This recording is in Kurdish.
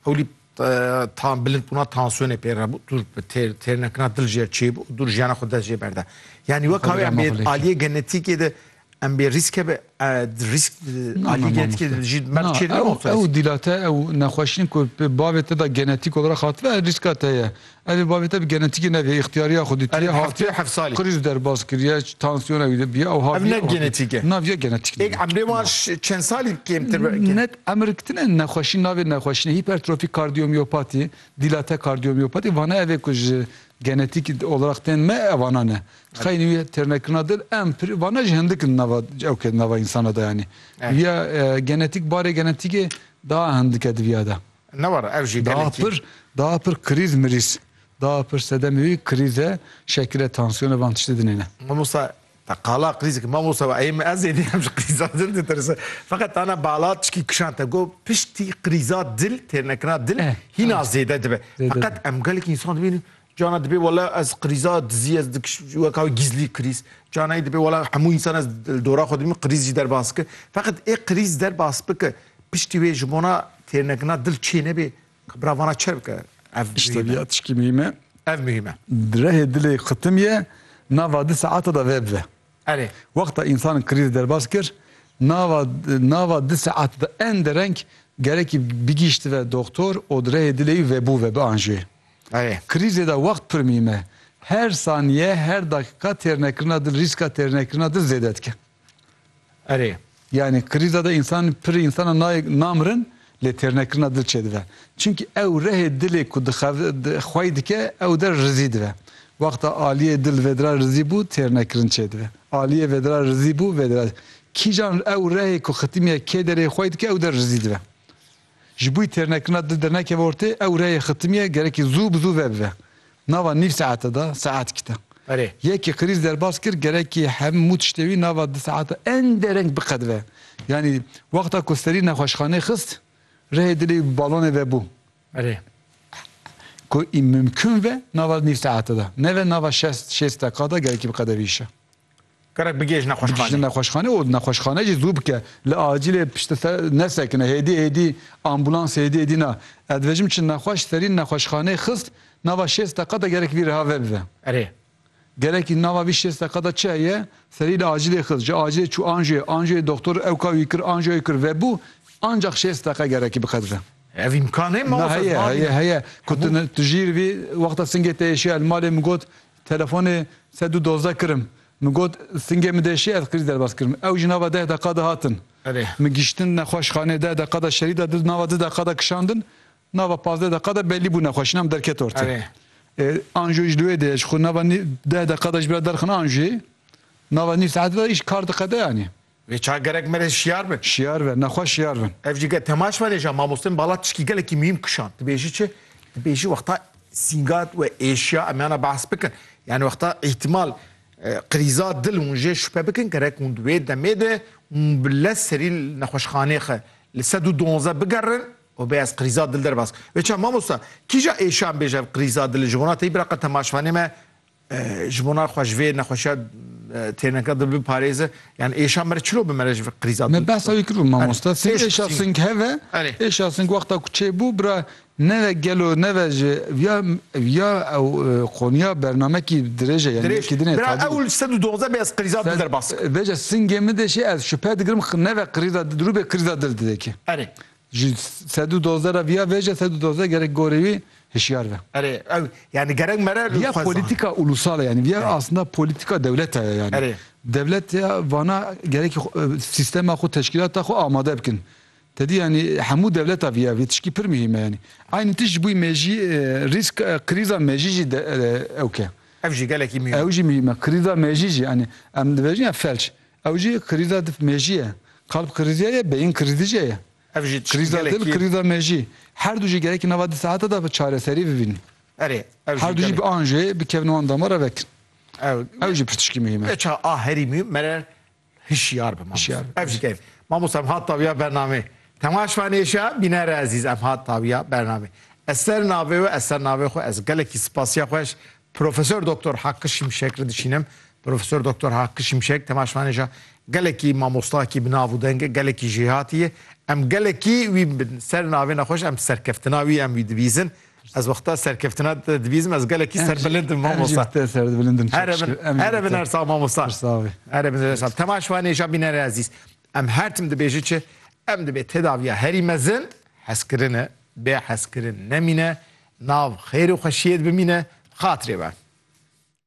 Hewlî tan bilind bûna tansiyonê pê re bû, dûr bi têr têr nekina dil jê çê bû, dûr jiyana xwe dest jê berde. Yanî wek hawê em bê aliyê genetîkê de em bê rîske be rîsk aliyê genetîkê de jî mer çê de. Ew dîlate ew nexweşîn ku bavê te de genetîk olarak hatibe rîska te ye. Ev ê babete bi genetîkê nebîye, îxtiyariya xwedî tê, hatiye qirîj derbas kiriye, tansiyona wî bîye ew hatiye. Ev ne genetîk e. Na viya genetîk nîne. Êk emrê wan çend salî kêmtir be? Ne emir tine nexweşî navê nexweşîne hîpertrofîk kardiyomîopatî, dîlate kardiyomîopatî vane ev ê ku ji genetîk olaraq tên me evana ne. Xeynî wî têrnekirina dil em pirî vane ji hindik in nava ew ke di nava însanan de yanî. Viya genetîk barê genetîkê daa hindik e di viya de. Daha pir, daha pir krîz mirîz. Daha pir sedemê wî krîz e, şekil e, tansiyon e, van tiştê dinêne. Mamosta, te qala krîz ki mamosta we eyê min ez ê dî em ji krîza dil ditirsin. Feqet tana bala çikî kişand te got piştî krîza dil têrnekirina dil hîna zêde dibe. Feqet em gelekî însan dibînin Cana dibê wela ez qirîza dizî ez weka wê gîzlî qirîz. Canayî dibê wela hemû însan ez li dora xwe dimîn qirîz jî derbas bike. Feqet ê qirîz derbas bike piştî wê ji bona têrnegirina dil çê nebê ka bira vana çi bike ev muhîme. Tişkî muhîme. Ev muhîme. Rehê dilê qitim ye nava di saeta de veb ve. Erê, wexta însan krîzê derbas kir, nava nava di saet di en dereng gerekî bigîştive doktor û di rehê dilê wî vebû ve bianjê. Erê. Krîzê de wext pir mîm e. Her saniye, her dakika têrnekirina dil rîska têrnekirina dil zêde dike. Erê. Yanî krîza de însan pirrî însanan nayê namirin lê têrnekirina dil çêdibe. Çimkî ew rehê dilê ku dixev xwey dike ew der rizî dibe. Wexta aliyê dil vedira rizî bû têrnekirin çêdibe. Aliyê vedira rizî bû vedira. Kîjan ew rehê ku xitimiye kê derê xwey dike ew der rizî dibe. Ji bo têrnekirina di dernekê ve ortê ew reyê xitimiyê gerekî zû bi zû vebive. Nava nîv saete de saet kite. Berê. Yekî Qirîz derbas kir gerekî hemû tiştê wî nava di saete ende reng biqedive. Yanî wexta ku serî nexweşxanê xist rehê dilê wî bi balonê vebû. Berê. Ku î mimkûn ve nava nîv saete de neve nava şêst şêst deqa de gerekî biqedevîşe. Gerek bigihîje nexweşxanê. Bigihîje nexweşxanê û nexweşxane jî zû bike. Li acîlê piştî te nesekine. Hêdî hêdî ambûlans hêdî hêdî na. Ez dibêjim çi nexweş serî nexweşxanê xist nava şêst deqa de gerek vî riha vebive. Erê. Gerekî nava vî şêst deqa de çi heye serî li acîlê xist. Ji acîlê çû anjoyê. Anjoyê doxtor ewka wî kir anjoya wî kir vebû. Ancax şêst deqa gerekî biqedive. Ev îmkan heye mamoste? Heye heye heye. Ku tu jî li vî wexta singê te êşiya li malê min got Telefonê sed û dozdeh kirim. Min got singê min de şî ez qirî derbas kirim. Ew jî nava deh deqa de hatin. Min gihiştin nexweşxanê deh deqa de şerî de du nava du deqa de kişandin. Nava pazdeh deqa de bellî bû nexweşîna min derket ortê. Ê anjûyê jî li wê de ye. Ji xwe nava deh deqa de ji ber derxin anjûyê. Nava nîv saetê de îş kar diqede yanî. Vê çar gerek me re şiyar bin. Şiyar be, nexwe şiyar bin. Ev jî ge temaş me re ja mamostên bala tişkî gelekî muhîm kişand. Dibêjî çi? Dibêjî wexta sîngat we êşiya em yana behs bikin. Yani wexta îhtimal krîza dil hûn jê şüphe bikin gerek hûn di wê demê de hûn bi lez serî li nexweşxanê xe li sed û duanzdeh bigerin û bê ez krîza dil derbas. Vê çar mamosta kîja êşiyan bêje ev krîza dili ji wana te yî bira qe temaşvanê me Ji bo na xwe ji vê nexweşiya têrneka di biparêze yan êşa me re çilo bi me re ji vê krîza Me behsa wî kiribû mamoste. Sing êşa sing heve êşa sing wexta ku çêbû bira neve gelo neve ji viya viya ew qoniya bernamekî dirêje yani dirêj kidine bira ew li sed û dozdeh bê ez krîza dil derbas kirim. Veja singê min de jî ez şupe digirim neve krîza dil dirû bê krîza dil didekê. Erê. Ji sed û dozdeh re viya vêje sed û dozdeh gerek gorî wî hişyar be. Erê, ew yanî gerek me re li Viya xwe zan. polîtîka ulûsal e yanî viya aslnda polîtîka dewlete ye yanî. Erê. Dewlet ya vana gerekî xwe sîstema xwe teşkîlata xwe amade bikin. Te dî yanî hemû dewleta viya vê tişkî pir muhîm e yanî. Aynî tişt ji bo mêjî rîsk krîza mêjî jî ewke. Ev jî gelekî muhîm e. Ew jî muhîm e. Krîza mêjî jî yanî em dibêjin ya felç. Ew jî krîza dif mêjî ye. Kalb krîzîya ye, beyin krîzî jî ye. Ev jî Krîza dil, gelekî. krîza mêjî. Her du jî gelekî nava di saete de çareserî bibînin. Erê, ev Her jî du jî gelekî. bian jê, bikevin wan dama re vekin. Ew Ew jî pirtişkî muhîm e. Eça a herî muhîm mere hişyar bi mamoste. Hişyar bi. Ev jî gelek. Mamoste em hat tawiya bernameyê. Temaşvanê êşiya, bînere ezîz em hat tawiya bernameyê. Ez ser navê we, ez ser navê xwe ez gelekî spasiya xweş Profesor Doktor Hakkı Şimşek re dişînim. Profesor Doktor Hakkı Şimşek temaşvanêja gelekî mamostakî bi nav û deng, gelekî jêhatî ye. Em gelekî wî bi ser navê ne xweş em serkeftina wî em wî dibîzin. Ez wexta serkeftina te dibîzim ez gelekî serbilind im mamosta. Em jî bi te serbilind in. Here bin her sal mamosta. Pirsavê. Here bin her sal. Temaşvanêja bînere ezîz. Em her tim dibêjin çi? Em dibê tedaviya herî mezin, hezkirine, bê hezkirin nemîne, nav xêr û xweşiyê de bimîne, bi xatirê be.